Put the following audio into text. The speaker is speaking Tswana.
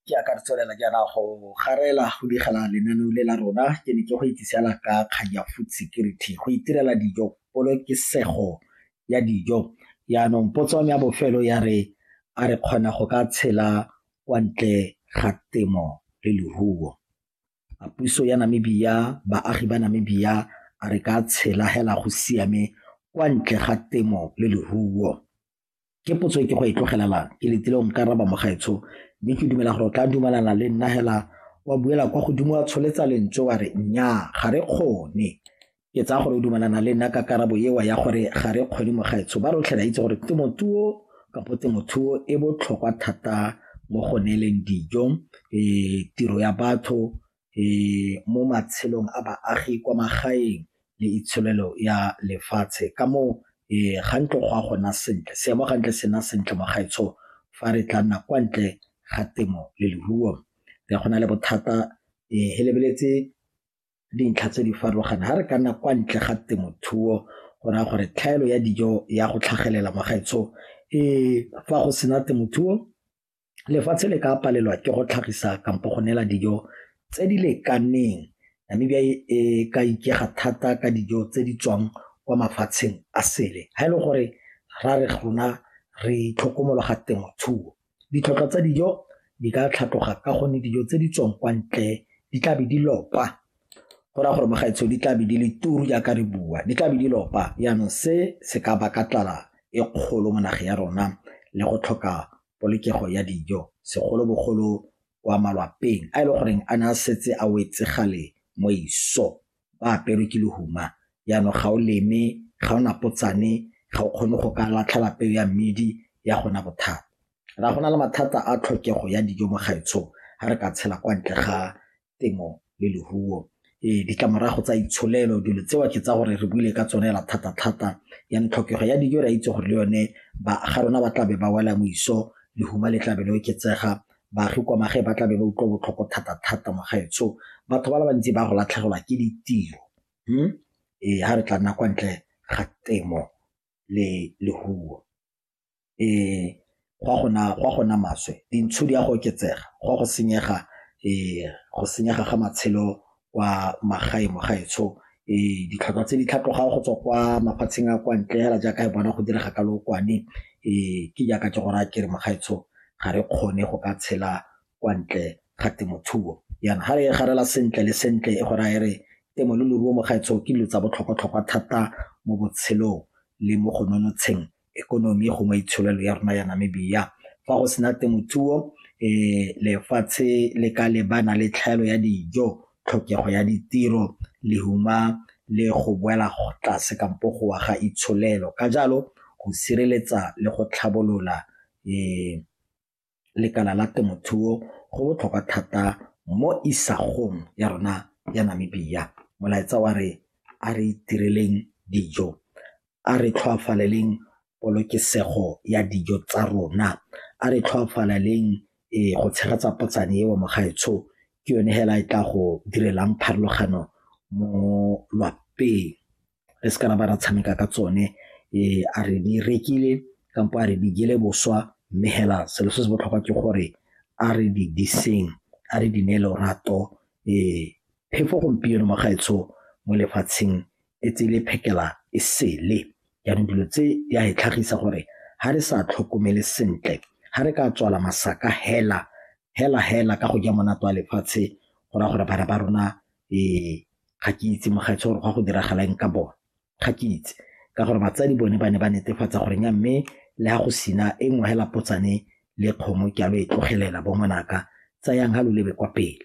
Ke ya ka re tswelela jaana go garela go digela lenaneo le la rona ke ne ke go itsisela ka kgang ya food security go itirela dijo polokesego ya dijo yaanong potso ya bofelo ya re a re kgona go ka tshela kwa ntle ga temo le leruo a puso ya Namibia baagi ba Namibia a re ka tshela hela go siame kwa ntle ga temo le leruo. Ke potso e ke go e tlogelelang, ke letile go nka raba mogaetsho, mme ke dumela gore o tla dumalana le nna hela wa buela kwa godimo wa tsholetsa lentswe wa re nnyaa ga re kgone. Ke tsaya gore o dumalana le nna ka karabo ewa ya gore ga re kgone mogaetsho. Ba rotlhe ra itse gore temothuo kapo temothuo e botlhokwa thata mo go neeleng dijo um tiro ya batho mo matshelong a baagi kwa magaeng le itsholelo ya lefatshe ka moo ga ntlo go a gona sentle seemo ga ntle sena sentle mo gaetsho fa re tla nna kwa ntle ga temo le leruo re go na le bothata e lebeletse dintlha tse di farologaneng ga re ka nna kwa ntle ga temothuo go raya gore tlhaelo ya dijo ya go tlhagelela mo gaetsho fa go sena temothuo lefatshe le ka palelwa ke go tlhagisa kampo go neela dijo tse di lekaneng Namibia e, e ka ikega thata ka dijo tse di tswang kwa mafatsheng a sele ga e le gore ra re gona re itlhokomologa temothuo ditlhotlhwa tsa dijo di ka tlhatloga ka gonne dijo tse di tswang kwa ntle di tlabe di lopa go raya gore magaetsho di tlabe di le turu jaaka re bua di tlabe di lopa jaanong se se ka baka tlala e kgolo mo nageng ya rona le go tlhoka polokego ya dijo segolobogolo kwa malwapeng a e le goreng a ne a setse a wetse gale mo iso ba aperwe ke lehuma jaanong ga o leme ga o napotsane ga o kgone go ka latlha lapeo ya mmidi ya gona bothata ra gona le mathata a tlhokego ya dijo mo gaetshong ga re ka tshela kwa ntle ga temo le leruo. Ee, ditlamorago tsa itsholelo dilo tseo ke tsa gore re buile ka tsone la thata-thata ya tlhokego ya dijo re a itse gore le yone ba ga rona ba tlabe ba wela moiso lehuma le tlabe le oketsega baagi kwa magae ba tlabe ba utlwa botlhoko thata-thata mogaetsho batho ba le bantsi ba go latlhegelwa ke ditiro hmm? ee ga re tla nna kwa ntle ga temo le lehuo go a go nna maswe, dintsho di a go oketsega, go a go senyega go senyega ga matshelo kwa magaeng mo gaetsho. Ditlhwatlhwa tse di tlhatlogang go tswa kwa mafatsheng a kwa ntle fela jaaka re bona go direga ka lookwane ke jaaka ke go raya ke re mo gaetsho ga re kgone go ka tshela kwa ntle ga temothuo. Jaanong ga re e garela sentle le sentle e go raya e re temo le leruo mo gaetsho ke dilo tsa botlhokwa-tlhokwa thata mo botshelong le mo go nonotsheng ekonomi gongwe itsholelo ya rona ya Namibia fa go sena temothuo um lefatshe le ka lebana le tlhaelo ya dijo tlhokego ya ditiro lehuma le go boela tlase kampo go wa ga itsholelo ka jalo go sireletsa le go tlhabolola um lekala la temothuo go botlhokwa thata mo isagong ya rona ya Namibia. Molaetsa wa re a re itireleng dijo, a re tlhoafaleleng polokesego ya dijo tsa rona, a re tlhoafaleleng go tshegetsa potsane eo mogaetsho ke yone hela e tla go direlang pharologano mo lwapeng. re se ka ra ba ra tshameka ka tsone a re di rekile kampo a re di jele boswa mme hela selo se se botlhokwa ke gore a re di diseng a re di ne lorato phefo gompieno magaetsho mo lefatsheng e tsele phekela e sele jaanong dilo tse di a e tlhagisa gore ga re sa tlhokomele sentle ga re ka tswala masaka hela hela hela ka go ja monate wa lefatshe go raya gore bana ba rona ga ke itse mogaetsho gore go a go diragala eng ka bone ga ke itse ka gore batsadi bone ba ne ba netefatsa gore nya mme le ga go sina e nngwe hela potsane le kgomo ke a lo e tlogelela bo ngwanaka tsayang ga lo lebe kwa pele